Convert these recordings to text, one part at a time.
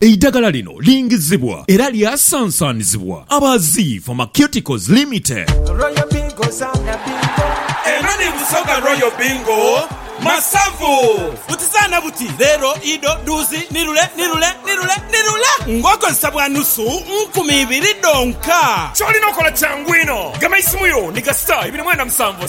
Eidagala lino lingizibwa era lyasansanizibwa aba Zii Pharmaceuticals Limited. Royal Bingo zaana bingo. Eno ni Busoga Royal Bingo masavu. Buti zaana buti, leero, ido, dhuuzi, ni lule, ni lule, ni lule, ni lule ng'okozesa bwa nusu nkumi ibiri dhonka. Ky'olina okola kyangu inho. Gema eisimu yo ni kasita ibiri mwenda musanvu.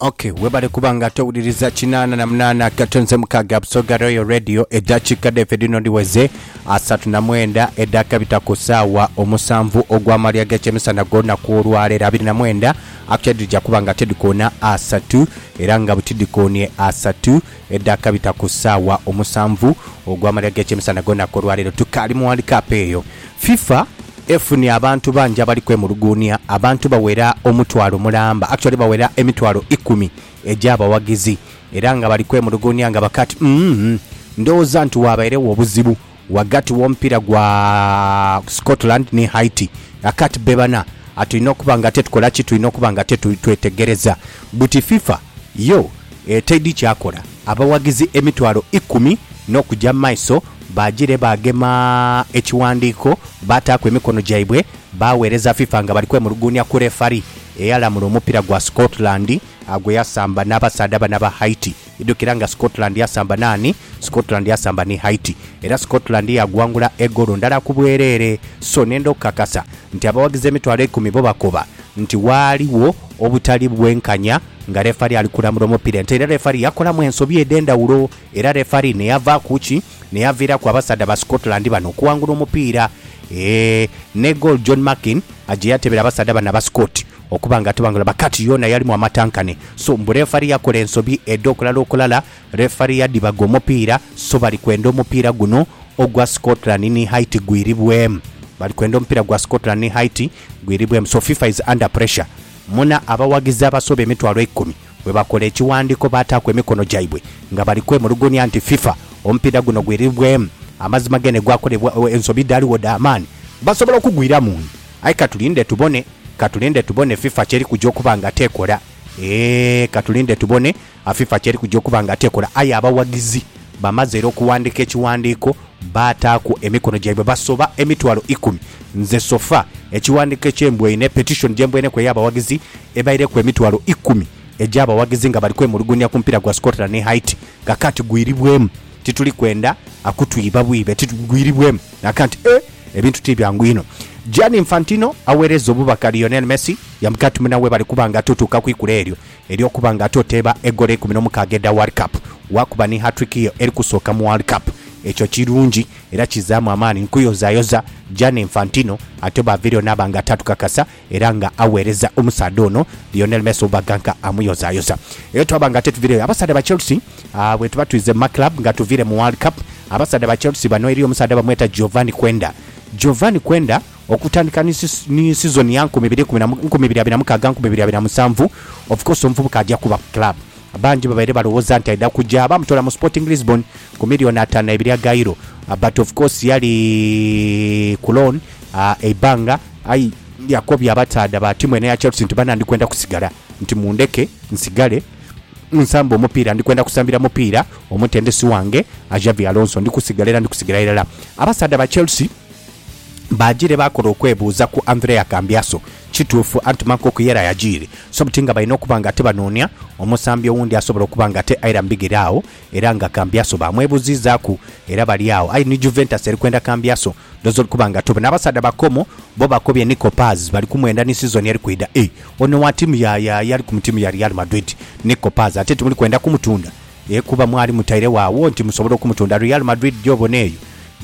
Ok, webale kuba nga towuliriza kinaana na munaana katonze mukaaga Busoga Royal Radio eddakiika dhaife dhino dhiweze asatu na mwenda edhakabita ku ssaawa omusanvu ogw'amalya g'ekyemisana gw'olunaku olwaleero abiri na mwenda akutya dhija kuba nga ate dhikoona asatu era nga bwe tidhikoonie asatu Edhakabita ku saawa omusanvu ogw'amalya g'ekyemisana gw'olunaku olwaleero tukaali mu World Cup eyo, FIFA efunye abantu bangi abali kwemuluguunia, abantu bawera omutwalo mulamba, actually bawera emitwalo ikumi egy'abawagizi era nga bali kwemuluguunia nga bakaati, Uhmm, ndhowooza nti waabairegho obuzibu Ghagati w'omupiira gwa Scotland ni Haiti, Akati bebana atulina okuba nga ate tukola ki? Tulina okuba nga ate twetegereza buti FIFA yo etaidi kyakola. Abawagizi emitwalo ikumi n'okuja mu maiso baajire baagema ekiwandiiko baataaku emikono gyaibwe baaweereza FIFA nga bali kwemuluguunia ku lefari eyalamula omupiira gwa Scotland gwe yasamba n'abasaadha bano aba Haiti. Idhukira nga Scotland yasamba naani? Scotland yasamba ni Haiti. Era Scotland yaaguwangula egolo ndala ku bwereere. So, nenda okukakasa nti abawagizi emitwalo eikumi bo bakoba nti waaliwo obutali bwenkanya nga lefari ali kulamula omupiira ente era lefari yakolamu ensobi edh'endhawulo era lefari ne yava ku ki? n'eyaviiraku abasaadha ba Scotland bano okuwangula omupiira ne goal John Markin gye yatebera abasaadha bano aba Scot okuba nga atabangula but kati yoona yalimu amatankane so mbu lefari yakola ensobi edhokulala okulala lefari yadhibaga omupiira so bali kwenda omupiira guno ogwa Scotland ni Haiti gwiribweemu bali kwenda omupiira gwa Scotland ni Haiti gwiribweemu so FIFA is under pressure muna abawagizi abasoba emitwalo eikumi. Bwebakola ekiwandiiko baataaku emikono gyaibwe nga bali kwemulugunya nti FIFA omupiira guno gwiribweemu amazima gene gwakolebwa ensobi dhaligho dha maani basobola okugwiramu nhi aye katulinde tubone katulinde tubone FIFA kyeri kuja okuba nga tekola eeh katulinde tubone FIFA kyeri kuja okuba nga tekola aye abawagizi bamaze era okuwandiika ekiwandiiko Baataaku emikono gyaibwe basoba emitwalo ikumi. Nze Sofa, ekighandiiko eky'embwaine, petition, gye mbwaineku ey'abawagizi ebaireku emitwalo ikumi egy'abawagizi nga bali kwemulugunya ku mupiira gwa Scotland ni Haiti nga kaati gwiribwemu. Tituli kwenda akutwiiba bwiibe, gwiribwemu nga kaati e, ebintu ti byangu inho. Gianni Infantino agheerezza obubaka Lionel Messi, Yamkatmna webale kuba nga totuuka ku ikula eryo. Eri okuba nga ate oteeba egoolo eikumi n'omukaaga edha World Cup, waakuba ni hat-trick yo eri kusooka mu World Cup, ekyo kirungi era kizzaamu amaani nkuyozayoza Gianni Infantino ate bw'aviireyo naaba nga taatukakasa era nga aweereza omusaadha ono Lionel Messi oba ganka amuyozayoza. Era twaba nga ate tuviireyo abasaadha ba Chelsea, bwetuba twidhze mu ma club nga tuviire mu World Cup, abasaadha ba Chelsea bano eriyo omusaadha bamweta Giovanni Quenda. Giovanni Quenda. Okutandika ni ni sizoni ya nkumi ibiri ikumi na mu, nkumi ibiri abiri na mukaaga, nkumi ibiri abiri na musanvu, of course omuvubuka aja kuba ku club. Bangi babaire balowooza nti aidha kuja, baamutoola mu Sporting Lisbon ku million ataanu na ibiri aga Euro but of course yali ku loan eibbanga aye yakobya abasaadha ba tiimu eno eya Chelsea nti bana ndikwenda kusigala nti mundheke nsigale nsambe omupiira, ndikwenda kusambira mupiira omutendesi wange Xabi Alonso, ndikusigala era ndikusigala irala. Abasaadha ba Chelsea. Baagire baakola okwebuuza ku Andrea Cambiasso. Kituufu anti Marco Cuéllar yagiire, so buti nga balina okuba ng'ate banoonia omusambi owundi asobola okuba ng'ate aira mu bigere agho era nga Cambiasso baamwebuziizaaku era bali agho. Aye ni Juventus eri kwenda Cambiasso, ndhooza ori kuba nga tobe. N'abasaadha ba Como bo bakobye Nico Paz, bali kumwenda ni sizoni eri kwidha. Eeh, ono wa ttiimu ya, ya, ya ali mu ttiimu ya Real Madrid, Nico Paz, ate timuli kwenda kumutunda? Aye kuba mwali mutairegho agho nti musobola okumutunda Real Madrid gy'obona eyo,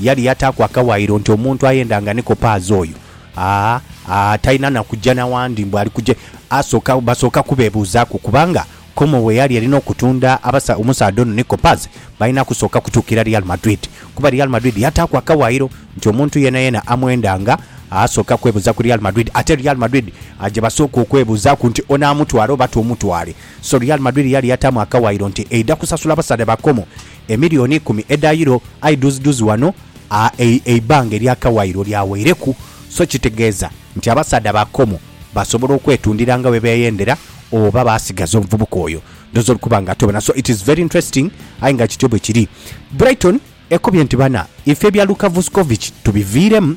yali yataaku akawaayiro nti omuntu ayenda nga ni kopaazi oyo, aa, aa, talina na kuja na wandi mbu ali kuja, asooka, basooka kubeebuuzaaku kubanga Como bwe yali erina okutunda abasa, omusaadha ono ni kopaazi, balina kusooka kutuukira Real Madrid kuba Real Madrid yataaku akawaayiro nti omuntu yeenayeena amwenda nga asooka kwebuuza ku Real Madrid ate Real Madrid gye basooka okwebuuzaaku nti onaamutwala oba tomutwale. So Real Madrid yali yataamu akawaayiro nti eidha kusasula abasaadha ba Como emiliyoni ikumi edha Euro aye dhuuzidhuuzi ghano eibbanga ery'akawaayiro lyaweireku so kitegeeza nti abasaadha ba Como basobola okwetundira nga bwe beeyendera oba baasigaza omuvubuka oyo ndhooza oli kuba nga ate obona. So it is very interesting aye nga kityo bwe kiri. Brighton ekubye nti bana ife ebya Luka Vuskovic tubiviiremu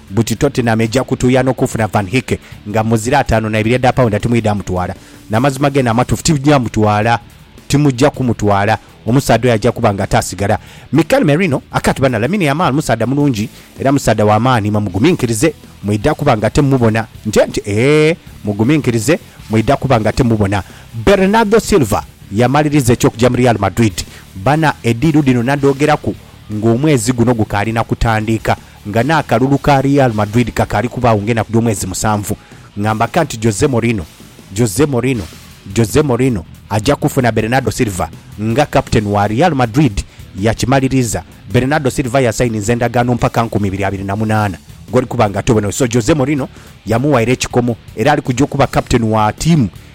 Buti Tottenham eja kutuya nokufuna Van Hicke nga muzira atano naibiri edha paunda timwidha mutwala. Namazima gene amatufu tija mutwala. Timuja kumutwala. Omusaadha oyo aja kuba nga ate asigala. Mikel Merino akati bana Lamine Yamal musaadha mulungi era musaadha wamaani imwe muguminkirize mwidha kuba nga ate mumubona nti nti eeh muguminkirize mwidha kuba nga ate mumubona. Bernardo Silva yamaliriza ekyokuja mu Real Madrid. Bana ediilu dhino nadhogeraku nga omwezi guno gukaali nakutandiika. Nga n'akalulu ka Real Madrid kakaali kubaagho ng'enaku dh'omwezi musanvu, nga mbaka nti Jose Mourinho, Jose Mourinho, Jose Mourinho aja kufuna Bernardo Silva nga kapiteeni wa Real Madrid. Yakimaliriza. Bernardo Silva yasayininze endagaano mpaka nkumi ibiri abiri na munaana gw'oli kuba nga atobeneire. So, Jose Mourinho yamuwaire ekikomo era ali kuja okuba kapiteeni wa tiimu.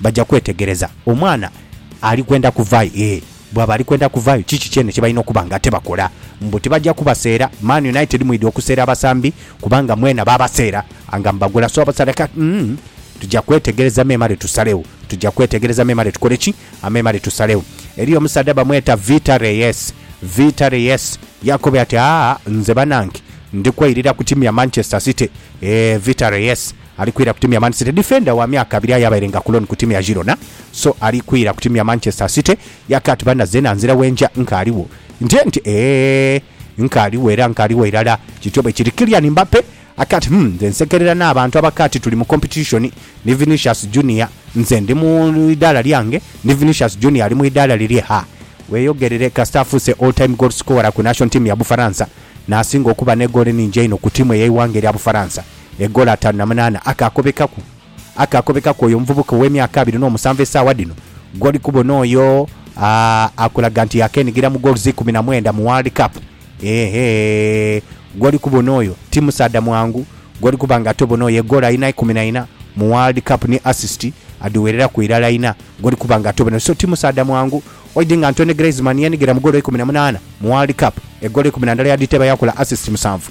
Baja kwetegereza omwana ali kwenda kuvayo. Ee, bwaba ali kwenda kuvayo, kiki kyene kye balina okuba nga tibakola? Mbu tibaja kubaseera. Man United mwidhi okuseera abasambi kubanga mwena baabaseera nga mubagula. So abasaadha kati, umm, tuja kwetegereza memale tusalegho. Tuja kwetegereza memale tukole ki? Memale tusalegho. Eriyo omusaadha bamweta Vita Reyes. Vita Reyes yakobe ati, Aa, nze banange ndi kweirira ku tiimu ya Manchester City. Ee, Vita Reyes Ali kwira ku tiimu ya Man City. Difenda wa myaka abiri aye abairenga ku loan ku tiimu ya Girona so ali kwira ku tiimu ya Manchester City. Yake ati, Banna zeena nzira wenja nkaaliwo. Ntye nti, Eeh, nkaaliwo era nkaaliwo irala. Kityo bwe kiri. Kylian Mbappe ake ati, Humm, nze nsekerera n'abantu abake ati tuli mu competition ni Vinicius Junior. Nze ndi mu idaala lyange ni Vinicius Junior ali mu idaala lirye. Ha! Weeyogerere kasita afuuse all time goal scorer ku national team ya Bufaransa n'asinga okuba n'egoolo enhingi einho ku tiimu ey'eighanga erya Bufaransa. Egolo ataanu na munaana akaakobekaku, akaakobekaku oyo omuvubuka ow'emyaka abiri n'omusanvu esaawa dhino, gw'oli kubona oyo akulaga nti yaakeenhigira mu gooluzi ikumi na mwenda mu World Cup. Eehhe, gw'oli kubona oyo ti musaadha mwangu, gw'oli kuba nga ate obona oyo egoolo alina ikumi na ina mu World Cup ni asisiti adhiwereraku irala ina, gw'oli kuba nga ate obona oyo. So, ti musaadha mwangu. Oidhi nga Antoine Griezmann yeenigira mu goolo ikumi na munaana mu World Cup, egoolo ikumi na ndala yadhiteeba yaakola asisiti musanvu.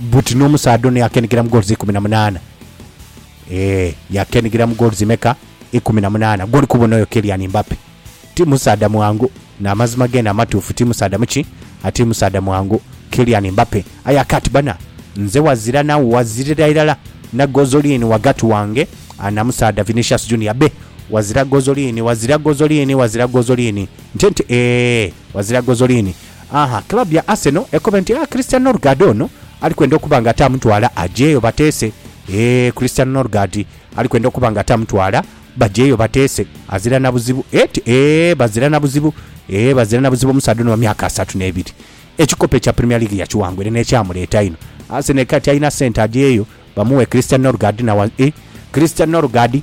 Buti n'omusaadha ono yaakeenhigira mu goals ikumi na munaana. Eeh, yaakeenhigira mu goals meka? Ikumi na munaana. Gw'oli kubona oyo Kylian Mbappe, ti musaadha mwangu. N'amazima geene amatuufu, ti musaadha muki? A Ti musaadha mwangu Kylian Mbappe. Aye aka ati, Bana, nze wazira na wazirira irala na gozoliini ghagati wange na musaadha Vinicius Junior. Be, wazira gozoliini, wazira gozoliini, wazira gozoliini. Nte nti, Eeh, wazira gozoliini. Ahaa club ya Arsenal ekobe nti a Christian Norgard ono ali kwenda okuba nga ate amutwala ajeeyo bateese eeh Christian Norgard ali kwenda okuba nga ate amutwala bajeeyo bateese azira na buzibu et eeh bazira na buzibu eeh bazira na buzibu omusaadha ono wa myaka asatu n'ebiri ekikopo ekya Premier League yakiwangwire n'ekyamuleeta ino Arsenal ekati alina sente ajeeyo bamughe Christian Norgard na wa eeh Christian Norgard.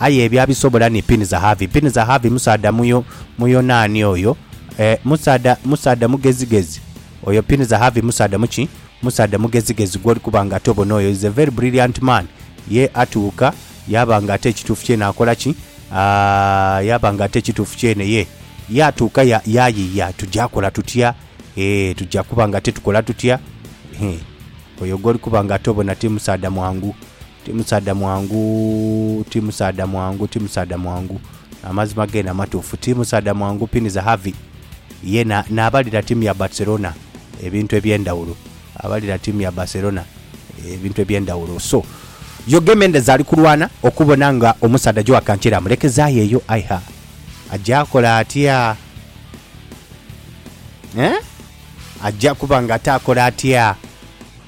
Aye ebyo abisobola ni Pinizahaavi. Pinizahaavi musaadha Muyo, Muyonaani oyo. E, musaadha, musaadha mugezigezi oyo. Pinizahaavi musaadha mu ki? Musaadha mugezigezi gw'oli kuba nga ate obona oyo. He's a very brilliant man. Ye atuuka yaaba nga ate ekituufu kyene akola ki? A, yaaba nga ate ekituufu kyene ye, ye atuuka ya, yaayiiya. Tuja kola tutya? E, tuja kuba nga ate tukola tutya? He, oyo gw'oli kuba nga ate obona ti musaadha mwangu. Ti musaadha mwangu, ti musaadha mwangu, ti musaadha mwangu. Amazima gene amatuufu. Ti musaadha mwangu Pini Zahavi ye naabalira ttiimu ya Barcelona ebintu eby'endhawulo. Abalira ttiimu ya Barcelona ebintu eby'endhawulo. So, Jorge Mendes ali kulwana okubona nga omusaadha Joao Cancelo amulekezaayo eyo. Aye ha, aja kola atya? Eeh? Aja kuba ng'ate akola atya?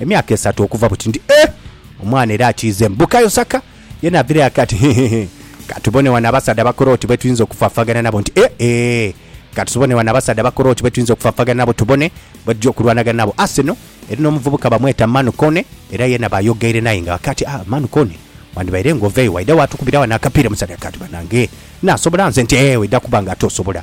emyaka esatu okuva buti nti, Eeh! Omwana era akiizeemu. Bukayo Saka yena avirayo ake ati, Hehehe! Ka tubone wano abasaadha abakora oti be tuyinza okufaafagana nabo. Nti, Eeh! Eeh! Ka tusubone wano abasaadha abakora oti be tuyinza okufaafagana nabo tubone bwe tuja okulwanagana nabo. Arsenal eri n'omuvubuka bamweta Manu Kone era yena bayogeire naye nga ake ati, Aah! Manu Kone, wandibaire ng'oveeyo waidha waatukubira wano akapiira mu side. Ake ati, Banange! Nnaasobola nze? Nti, Eeh! Oidha kuba ng'ate osobola.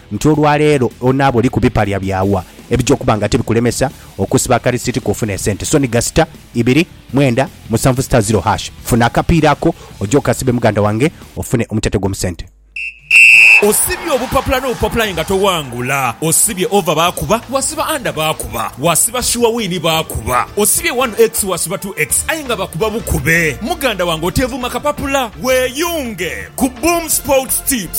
nti olwa leero onaaba oli ku bipalya bya wa ebija okuba nga tibikulemesa okusiba akalisiti ko ofune esente so ni gasita ibiri mwenda musanvu star zero hash funa akapiira ako oje okasibe muganda wange ofune omutete gwo mu sente. Osibye obupapula n'obupapula aye nga towangula Osibye over baakuba Wasiba under baakuba Wasiba sure win baakuba Osibye one x wasiba two x aye nga bakuba bukube Muganda wange oteevuma kapapula Weeyunge ku Boom Sports Tips.